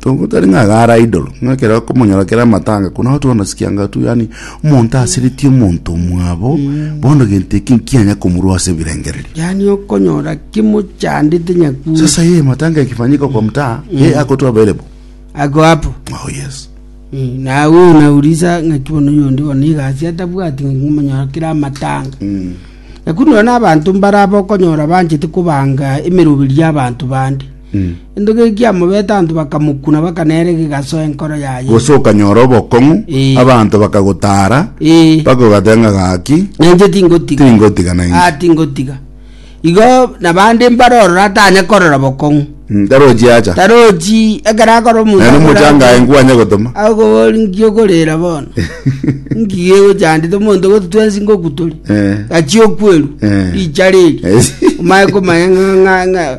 Tongo tari ng'a agara idolo, ng'a ekero akomonyora kera amatanga, kuna otu bono sikianga tu, yani omonto asiritie omonto omwabo, bono gento eki nkianya komorua ase ebirengererio. yaani okonyora kimochandete nyakuri Sasa yeye matanga yakifanyika kwa mtaa, yeye ako tu available. ako hapo Oh yes. Mm, na huyu unauliza ng'aki bono yondi bono igasi atabwati ng'aki ng'omonyora kera amatanga Mm. nakunora na abanto mbaraba okonyora banchete kobanga emeroberio y'abanto bande Gento keke kiamobete anto bakamokuna, baka nere gegasoa enkoro yaye. Gose okanyora obokong'u, Eh. abanto bakagotaara, Eh. mpaka ogateba ng'a gaki, Na inche tingotiga. Tingotiga na inche. Ah, tingotiga. Igo nabande mbare ororo atanye korora bokong'u. Mm, tarochi acha. Tarochi ekero akora omonto. Naende akora omochanga aye akoe- nkwanye gotoma. Akobori nki okorera bono. Nki gegochandete omonto goti twensi ngoku tore. Eh. Gachi okweru. Eh. Richa riri. Eh. Omaye komanya ng'a- ng'a- ng'a-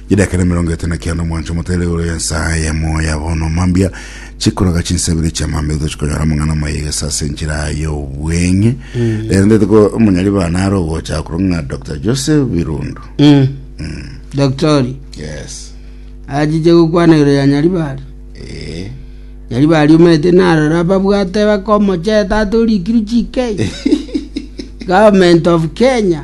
Chidaaka na emerongo etano na kianda omwancho motere igoro y'ensa y'emoyo ya bono mambia chikoroga chinsa ibere chia mambia tochi konyora amang'ana amayegesa ase enchera y'obweng'e rero ndete ko omonyari bana are ogocha akoro ng'a dr joseph birundu Doktori, yes achiche gokwana igoro ya Nyaribari. eh Nyaribari omete narora ababwate bakomocheta ate orikiru chikei. Government of Kenya.